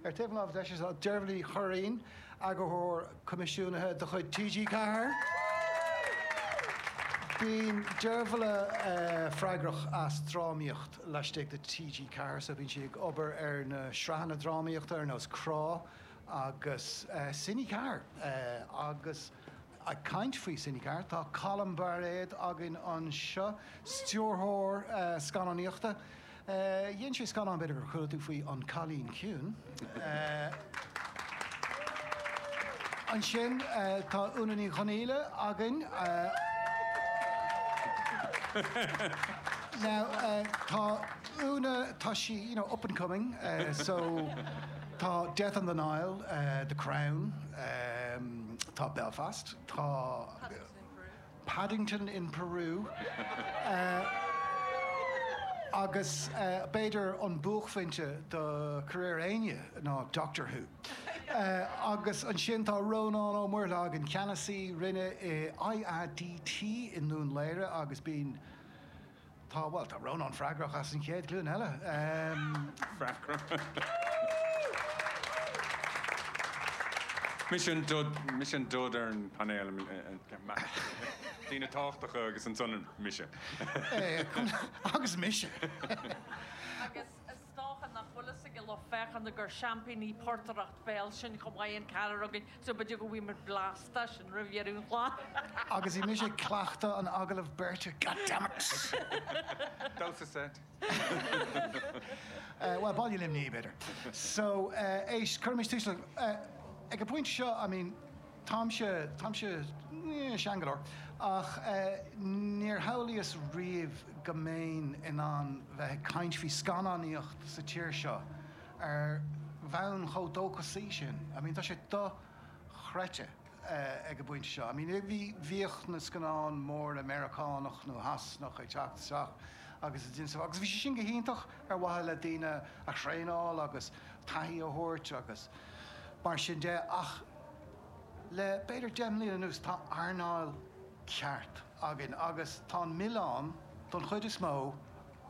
Ar taobh an láimhe deise tá Deirbhile Ní Churraighín, Eagarthóir Coimisiúnaithe de chuid TG4. Bíonn Deirbhile freagrach as drámaíocht laistigh de TG4 so bíonn sí ag obair ar na sraitheanna drámaíochta ar nós Crá agus Cine4. Agus ag caint faoi Cine4 tá Colm Bairéad againn anseo, stiúrthóir scannánaíochta. Dhein sé scannán, b'fhéidir gur chuala tú faoi, An Cailín Ciúin. Ansin tá Úna Ní Dhonghaíle againn. Now tá Úna, tá sí, you know, up and coming so tá Death on the Nile, The Crown, tá Belfast, tá... Paddington in Peru. Paddington in Peru agus b'fhéidir an buaicphointe do career éinne ná Doctor Who. Agus ansin tá Rónán Ó Muirthile againn, Ceannasaí Roinne i IADT i nDún Laoghaire agus bíonn. Tá, bhuel, tá Rónán freagrach as an chéad ghlúin eile. Mise an dud ar an bpainéal, daoine tábhachtacha agus ansan mise. Agus mise. Is dócha nach bhfuil fhios ag an lucht féachana gur seaimpíní portaireacht bhéil sinn chomh maith, an ceathrar againn, so b'fhéidir go bhfaighidh muid blast as sin roimh dheireadh an chláir! Agus bhí mise ag cleachtadh an agallaimh beirte, goddammit! Damhsa seit. Bhuel, Baile Luimní, b'fhéidir. So, éist, cuirimis tús le, ag an bpointe seo, I mean, Táimse, táimse, eh, sean go leor, ach, eh, níor shamhlaíos riamh go mbeinn in ann bheith ag caint faoi scannánaíocht sa tír seo ar bhonn chomh dóchasaí sin. I mean, tá sé do-chreidte, eh, ag an bpointe seo. I mean, bhí, bhíodh na scannáin mhóra Meiriceánach nó Shasanach ag teacht isteach agus ag déanamh, agus bhí sé sin go hiontach ar mhaithe le daoine a thraenáil agus taithí a thabhairt agus mar sin de ach, Le b'fhéidir deich mbliana anuas tá earnáil ceart againn agus tá an milleán, don chuid is mó,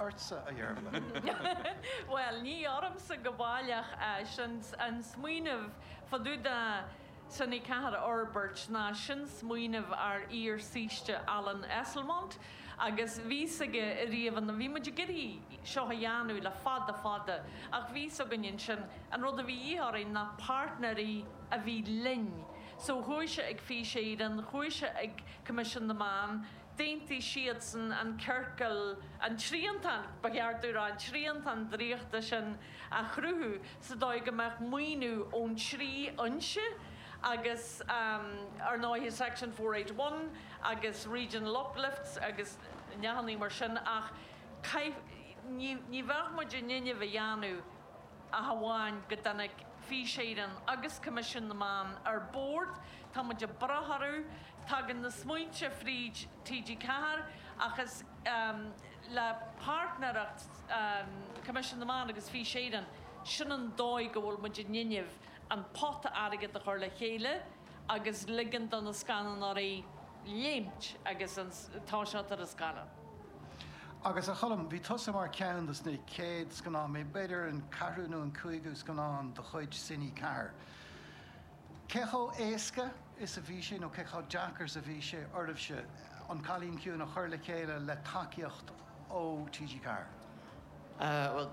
ortsa, a Dheirbhile. Bhuel, ní ormsa go baileach é. An smaoineamh fá dtaobh de Cine4 a fhorbairt ná sin smaoineamh ár iar-saoiste Alan Esslemont. Agus bhí fhios aige i riamh an, bhí muid ag iarraidh seo a dhéanamh le fada fada ach bhí fhios againn ansin, an rud a bhí a dhíth orainn ná páirtnéirí a bhí linn. So chuaigh sé ag Fís Éireann, chuaigh sé ag Coimisiún na Meán, d'aontaigh siadsan an ciorcal, an triantán, ba cheart dom a rá, an triantán draíochta sin, a chruthú sa dóigh go mbeadh maoiniú ón trí fhoinse agus ar ndóighe section four eight one agus regional uplifts agus neathannaí mar sin ach caith, ní, ní bheadh muid in innimh a dhéanamh ach amháin go dtáinig Fís Éireann agus Coimisiún na Meán ar bord, tá muid ag brath orthu, tagann na smaointe fríd TG4 ach is. le páirtnéireacht Coimisiún na Meán agus Fís Éireann, sin an dóigh go bhfuil muid in innimh an pota airgid a chur le chéile agus ligean do na scannánóirí léimt agus an t-ádh seo ar an scannán. Agus a Choilm, bhí tusa mar ceann dos na chéad scannáin, b'fhéidir an ceathrú nó an cúigiú scannán de chuid Cine 4, Cé chomh héasca is a bhí sé, nó cé chomh deacair is a bhí sé oraibhse An Cailín Ciúin a chur le chéile le tacaíocht ó TG Ceathair? Bhuel,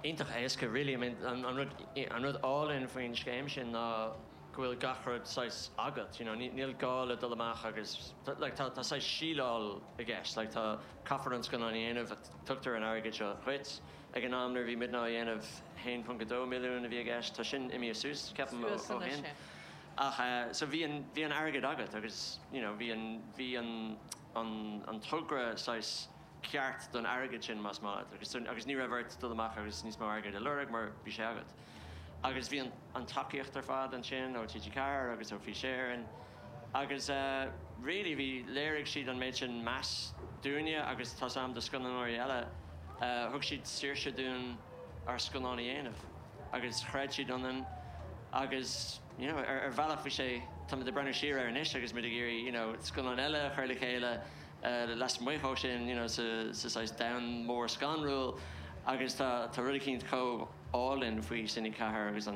iontach éasca really, I mean an rud, an rud álainn faoin scéim sin ná go bhfuil gach rud saghas agat, you know, níl gá le dul amach agus, like tá saghas síleáil i gceist, like tá, caithfear an scannán a dhéanamh, Tugtar an airgead seo dhuit. Ag an am nuair a bhí muidne á dhéanamh, 1.2 milliún a bhí i gceist. Tá sin imithe suas, ceapaim, ó shin. Ach so bhí an, bhí an airgead agat agus, you know, bhí an, bhí an, an, an togra saghas ceart don airgead sin, más maith, agus, agus ní raibh ort dul amach agus níos mó airgid a lorg mar bhí sé agat. agus bhí an tacaíocht ar fad ansin ó TG4 agus ó Fís Éireann agus really bhí, léirigh siad an méid sin meas dúinne agus tá's a'm do scannánóirí eile, thug siad saoirse dúinn ár scannán a dhéanamh agus chreid siad ionainn agus you know ar bhealach bhí sé, táimid ag breathnú siar air anois agus muid ag iarraidh you know scannáin eile a chur le chéile lasmuigh de sin, you know, sa saghas domhan mór scanrúil agus tá rud eicínt chomh álainn faoi Cine 4 agus an.